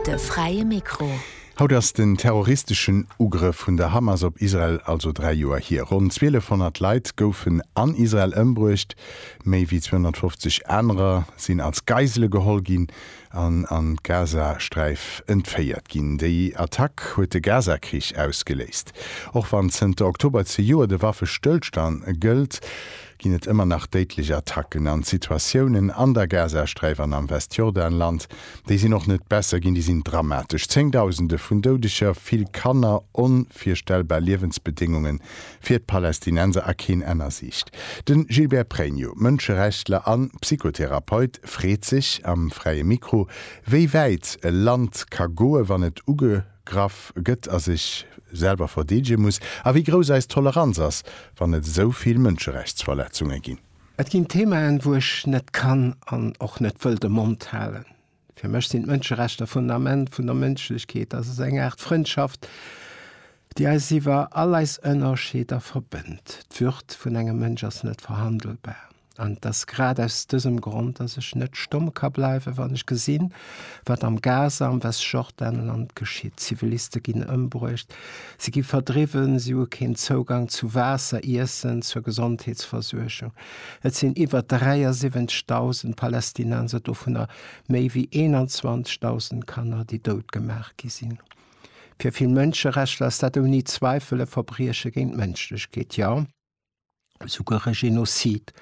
De fräie Mikro. Haut ass den terroristeschen Ugrëff vun der Hamas op Israel also dräi Joer hier. Ronn 1200 Leit goufen an Israel ëmbruecht, méi wéi 250 anerer sinn als Geisele geholl ginn an an d'Gazasträif entféiert ginn. Déi Attack huet de Gazakrich ausgeléist. Och wann zënter Oktober zejoert e Waffestëllstand gëllt, ginn et ëmmer nach déidlech Attacken an Situatiounen an der Gazasträif an am Westjordanland. Déi sinn och net besser ginn, déi sinn dramatesch. Zéngdausende vun Doudeger, vill Kanner, onvirstellbar Liewensbedéngunge fir d'Palästinenser a keen Enn a Siicht. Den Gilbert Pregno, Mënscherechtler an Psychotherapeut, freet sech am Fräie Mikro, wéi wäit e Land ka goe wann et uge. Graff gëtt a sech selwer verdeedege muss a wéi grouss eis Toleranz ass, wann et esou vill Mënscherechtsverletzunge ginn. Et ginn Themaen, wou ech net kann an och net wëll de Mond halen. Fir mech sinn d'Mënscherechter d'Fundament vun der Mënschlechkeet. Dass ass eng Aart Frëndschaft, déi eis iwwer all eis Ënnerscheeder verbënnt. D'Würd vun engem Mënsch ass net verhandelbar. An et ass grad aus dësem Grond, dass ech net stomm ka bleiwen, wann ech gesinn, wat am Gaza, am Westjordanland geschitt. Ziviliste ginn ëmbruecht, si gi verdriwwen, si hu keen Zougang zu Waasser, Iessen, zur Gesondheetsversuergung. Et sinn iwwer 73.000 Palästinenser, dovunner méi wéi 21.000 Kanner, déi dout gemaach gi sinn. Fir vill Mënscherechtler ass dat ouni Zweifel e Verbrieche géint d'Mënschlechkeet, jo, souguer e Genozid.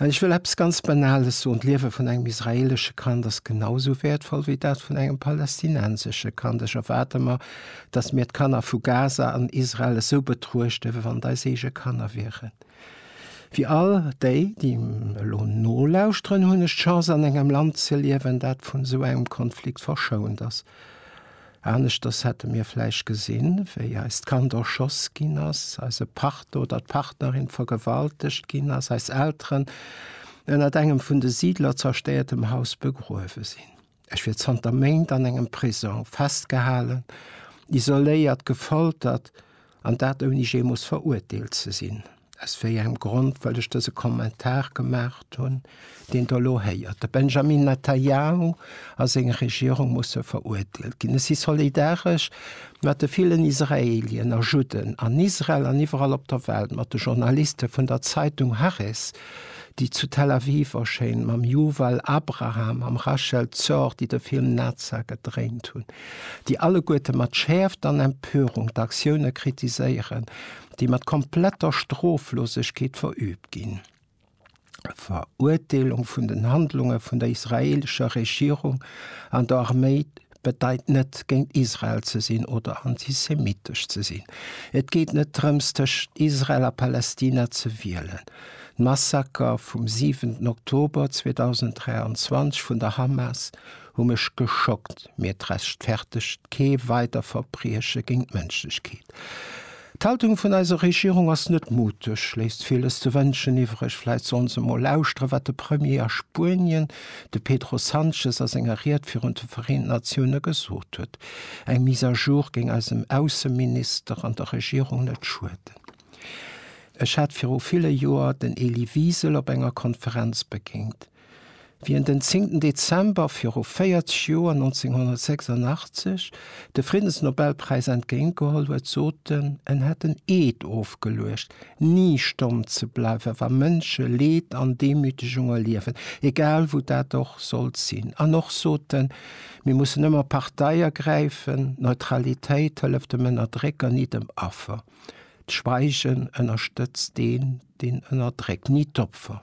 An ech wëll eppes ganz Banales soen, D'Liewe vun engem israeelesche Kand ass genau esou wäertvoll wéi dat vun engem palästinensesche Kand. Ech erwaarde mer, datt mir d'Kanner vu Gaza an Israel esou betruechten, wéi wann et eis eege Kanner wieren. Fir all déi, déi elo nolauschteren, hunn ech d'Chance an engem Land ze liewen, dat vun esou engem Konflikt verschount ass. Aneschters hätte mir vläicht gesinn, wéi eist Kand erschoss ginn ass, eise Partner oder d'Partnerin vergewaltegt ginn ass, eis Elteren ënnert engem vun de Siidler zerstéiertem Haus begruewe sinn. Ech wier zanter Méint an engem Prisong, festgehalen, isoléiert, gefoltert. An dat ouni jee muss verurteelt ze sinn. Aus wéi engem Grond wëll ech dëse Kommentar gemaacht hunn, deen Der elo héiert? De Benjamin Netanyahu a seng Regierung musse verurteelt ginn. Ech si solidaresch mat de villen Israelien a Judden an Israel an iwwerall op der Welt, mat de Journaliste vun der Zeitung Haaretz, déi zu Tel Aviv erschéint, mam Yuval Abraham, mam Rachel Zor, déi de Film Naza gedréint hunn, déi alleguerte mat Schäerft an Empörung d'Aktioune kritiséieren, déi mat kompletter Stroflosegkeet verüübt ginn. D'Verurteelung vun den Handlunge vun der israeelescher Regierung an der Arméi bedeit net géint Israel ze sinn oder antisemitesch ze sinn. Et geet net drëms tëschent Israel a Palästina ze wielen. D'Massaker vum 7 Oktober 2023 vun der Hamas hu mech geschockt, mee et rechtfertegt kee weider Verbrieche géint d'Mënschlechkeet. D'Haltung vun eiser Regierung ass net muteg, léisst villes ze wënschen iwwreg. Vläit sollen se emol lauschteren, wat de Premier a Spuenien, de Pedro Sanchez, a senger Ried virun de Vereenten Natiounen gesot huet. Eng Mise à jour géing eisem Ausseminister an der Regierung net schueden. Ech hat viru ville Joer den Elie Wiesel op enger Konferenz begéint. Wéi en den 10 Dezember viru 40 Joer, 1986, de Friddensnobelpräis entgéint geholl huet, sot en, en hätt en Eed ofgeluecht, ni stomm ze bleiwen, wa Mënsche Leed an Demütegung erliewen, egal wou dat och sollt sinn. An och sot en, mir mussen ëmmer Partei ergräifen, Neutralitéit hëlleft dem Ënnerdrécker, ni dem Affer. D'Schweigen ënnerstëtzt deen, deen ënnerdréckt, ni d'Opfer.